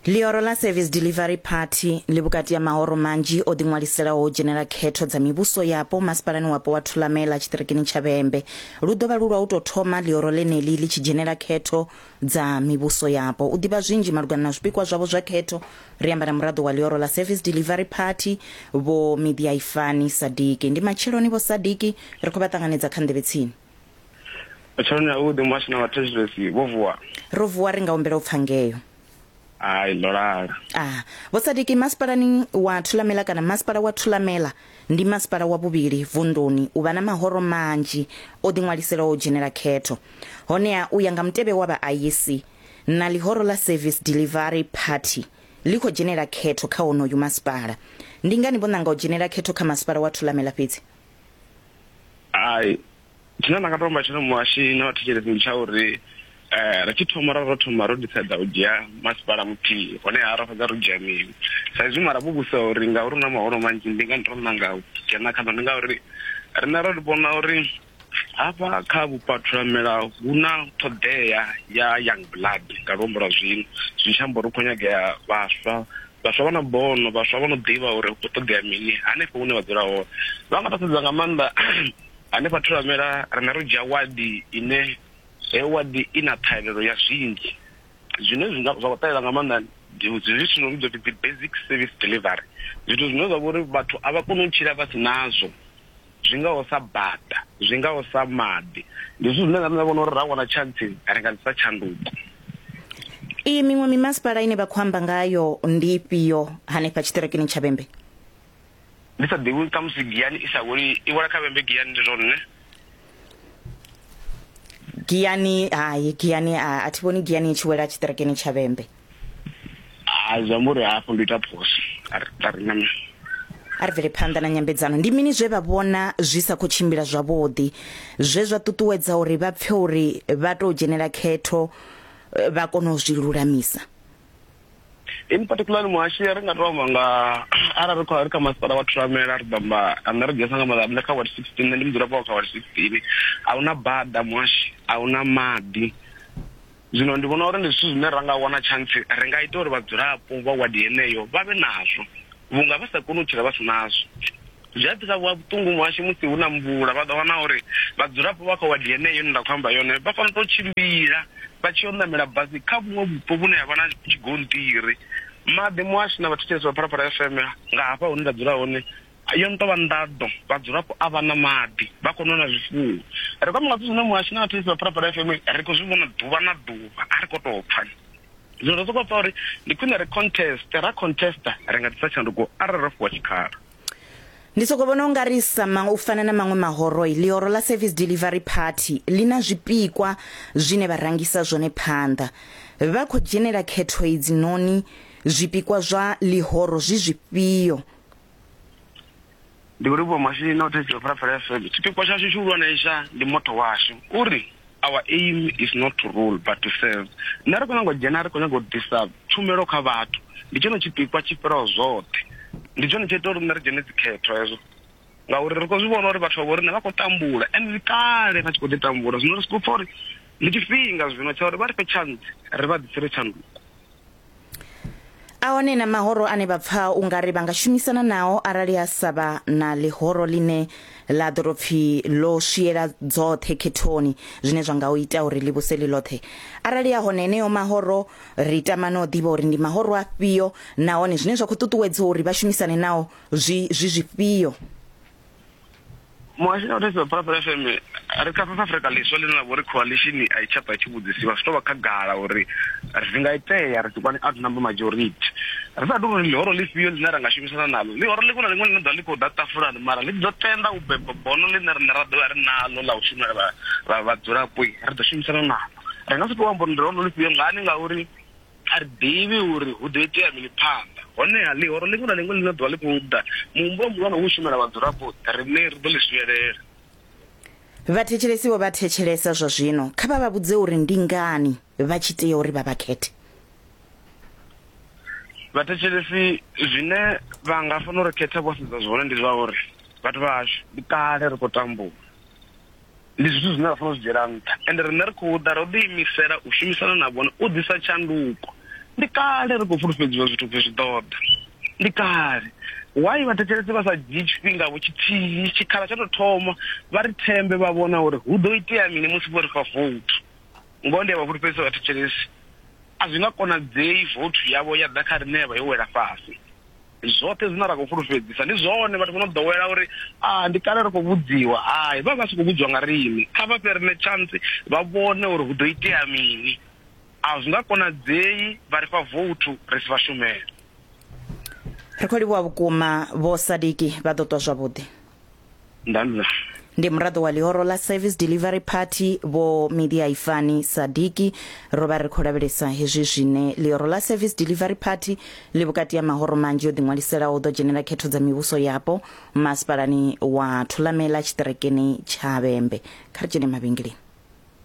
Ḽihoro ḽa Service Delivery Party ḽi vhukati ha mahoro manzhi o ḓiṅwaliselaho u dzhenela khetho dza mivhuso yapo masipalani wapo wa Thulamela tshiṱirikini tsha Vhembe. Lu ḓo vha lu lwa u tou thoma ḽihoro ḽeneḽi ḽi tshi dzhenela khetho dza mivhuso yapo. U ḓivha zwinzhi malugana na zwipikwa zwavho zwa khetho, ri amba na muraḓo wa ḽihoro ḽa Service Delivery Party, Vho Midiaifani Sadiki. Ndi matsheloni Vho Sadiki ri khou vha ṱanganedza kha nḓevhe tsini. Tshaone a u ḓi muhasho na vhathetshelesi vho vuwa. Ro vuwa ri nga humbela u pfa ngeo. Hai ndo lala. Ah, Vho Sadiki masipalani wa Thulamela kana masipala wa Thulamela ndi masipala wa vhuvhili vunḓuni u vha na mahoro manzhi o ḓiṅwaliselaho u dzhenela khetho. Honeha u ya nga mutevhe wa vha aisi na ḽihoro ḽa Service Delivery Party ḽi khou dzhenela khetho kha honoyu masipala. Ndi ngani vho ṋanga u dzhenela khetho kha masipala wa Thulamela fhedzi? hai tshine nda nga to amba tshone muhashi na vhathetshelesi ndi tsha uri um ri tshi thoma ra ro thoma ro ḓisedza u dzhia masipala muthihi honeha ra fhedza ro dzhia mini sa izwi mara vhuvhusa uri ngauri hu na mahoro manzhi ndi ngani ro nanga u dzhena khaḓo ndi ngauri riṋe ro ri vhona uri hafha kha vhupathulamela hu na ṱhoḓea ya young blood nga luambo lwa zwino zwi tshi amba uri hu khou nyagea vhaswa Vhaswa vha na bono, vhaswa vha no ḓivha uri hu khou ṱoḓea mini hanefho hune vha dzula hone. Vha nga vha sedza nga maanḓa hanefha Thulamela, riṋe ro dzhia wadi ine heyo wadi i na ṱhahelelo ya zwinzhi zwine zwi nga zwa khou ṱahela nga maanḓa ndi zwithu zwo vhidzwa upfi dzi basic service delivery, zwithu zwine zwa vha uri vhathu a vha koni u tshila vha si nazwo. zwi ngaho sa bada, zwi ngaho sa maḓi. Ndi zwithu zwine na nṋe nda vhona uri ra wana tshantsi ri nga ḓisa tshanduko. Iyi miṅwe mimasipala ine vha khou amba ngayo ndi ifhio hanefha tshiṱirekini tsha Vhembe? Ndi sa ḓivhi uri khamusi Giyani i sa weli i wela kha Vhembe Giyani ndi zwone? Giyani hai, Giyani a thi vhoni Giyani i tshi wela tshiṱirekini tsha Vhembe. ha zwi amba uri hafho ndo ita phoso a ri a ri nana a ri bvele phanḓa na nyambedzano ndi mini zwe vha vhona zwi sa khou tshimbila zwavhuḓi zwe zwa ṱuṱuwedza uri vha pfe uri vha tou dzhenela khetho eh, vha kona u zwi lulamisa in particular muhashi ri nga to amba nga arali ri kha ri kha masipala wa thuramela ri ḓamba ane ri dzesa nga maḓa nṋe kha ward 16 nṋe ndi mudzulapo wa kha ward 16 a huna bada muhashi a huna maḓi Zwino ndi vhona uri ndi zwithu zwine ra nga wana tshantsi ri nga ita uri vhadzulapo vha wadi yeneyo vha vhe nazwo vhunga vha sa koni u tshila vha si nazwo. Zwi a ḓisa vhuṱungu muhasho musi hu na mvula vha ḓo wana uri vhadzulapo vha kha wadi yeneyo ine nda khou amba yone vha fanela u tou tshimbila vha tshi yo ṋamela basi kha vhuṅwe vhupo vhune ha vha na tshigonṱiri. Maḓi, muhasho na vhathetshelesi vha Phalaphala FM nga hafha hune nda dzula hone yo no tou vha nḓaḓo vhadzulapo a vha na maḓi vha khou nona zwifuwo ri kwama nga zwithu zwine muhashi na vhathetsisi vha phalaphala fm ri khou zwi vhona ḓuvha na ḓuvha a ri khou tou pfa zwino ro sokou pfa uri ndi khwine ri conteste ra contesta ri nga ḓisa tshanduko arali ro fhiwa tshikhala Ndi soko vhona ungari sama u fana na maṅwe mahoroi, ḽihoro ḽa Service Delivery Party ḽi na zwipikwa zwine vha rangisa zwone phanḓa. Vha khou dzhenela khetho idzi noni zwipikwa zwa ḽihoro zwi zwifhio ndi uri vho masini o thetshiwa pharapara fm tshipikwa tshashu tshihulwanesa ndi moto washu uri our aim is not to rule but to serve nṋe ri khou nyanga u dzhena ri khou nyanga u ḓisa tshumelo kha vhathu ndi tshone tshipikwa tshi fhiraho zwoṱhe ndi tshone tsho ita uri nṋe ri dzhene dzikhetho hezwo ngauri ri khou zwi vhona uri vhathu vha vho riṋe vha khou tambula and ndi kale vha tshi khou ḓi tambula zwino ri sokou pfa uri ndi tshifhinga zwino tsha uri vha ri fhe tshantsi ri vha ḓisire tshanduko a hone na mahoro ane vha pfa u nga ri vha nga shumisana nao arali ha sa vha na ḽihoro ḽine ḽa ḓo tou pfhi ḽo swiela dzoṱhe khethoni zwine zwa nga u ita uri ḽi vhuse ḽi ḽoṱhe arali ya hone heneyo mahoro ri tama no ḓivha uri ndi mahoro afhio nahone zwine zwa khou ṱuṱuwedzwa uri vha shumisane nao zwi zwi zwifhio muhasho na vhathetshiwa phalaphala fm ri kha south africa ḽiswa ḽine ḽa vha uri coalition a i tsha bva i tshi vhudzisiwa zwi tou vha khagala uri zwi nga itea ri ḓikwani out number majority ri sa tou ri ḽihoro ḽifhio ḽine ra nga shumisana naḽo ḽihoro ḽiṅwe na ḽiṅwe ḽine ḓa ḽi khou ḓa tafulani mara ḽi ḓo tenda u beba bono ḽine riṋe ra ḓovha ri naḽo ḽa u shumela vhadzulapo ri ḓo shumisana naḽo ri nga si tou amba uri ndi lihoro ḽifhio ngani ngauri A ri ḓivhi uri hu ḓo itea mini phanḓa. Honeha, ḽihoro ḽiṅwe na ḽiṅwe ḽine ḓuvha ḽi khou ḓa, muhumbulo muhulwane u u shumela vhadzulapo, riṋe ri ḓo ḽi swielela. Vhathetshelesi vho vha thetshelesa zwa zwino, kha vha vha vhudze uri ndi ngani vha tshi tea uri vha vha khethe. Vhathetshelesi zwine vha nga fanela u ri khetha vho sedza zwone ndi zwa uri, Vhathu vha hashu, ndi kale ri khou tambula. ndi zwithu zwine ra fanela zwi dzhiela nṱha ende riṋe ri khou ḓa ro ḓiimisela u shumisana na vhone u ḓisa tshanduko ndi kale ri khou fulufhedziwa zwithu pfhi zwi ḓoḓa ndi kale why vhathetshelesi vha sa dzhii tshifhingavho tshithihi tshikhala tsha tou thoma vha ri thembe vha vhona uri hu ḓo itea mini musi vho ri fha vouthu ngoho ndi a vha fulufhedzisa vhathetshelesi a zwi nga konadzei vouthu yavho ya ḓa kha riṋe ya vha yo wela fhasi zwoṱhe zwine ra khou fulufhedzisa ndi zwone vhathu vho no ḓowela uri a ah, ndi kale ri khou vhudziwa hai vha vha si khou vhudziwa nga riṋe kha vha fhe riṋe chance vha vhone uri hu ḓo itea mini a zwi nga konadzei vha ri fha voutu ri si vha shumele ri khou livhuwa vhukuma vho sadiki vha ḓo ṱwa zwavhuḓi ndanza ndi muraḓo wa ḽihoro ḽa service delivery party vho media ifani sadiki ro vha ri khou lavhelesa hezwi zwine ḽihoro ḽa service delivery party ḽi vhukati ha mahoro manzhi o ḓiṅwaliselaho u ḓo dzhenela khetho dza mivhuso yapo masipalani wa thulamela tshiṱerekeni tsha vhembe kha ri dzhene mavhengeleni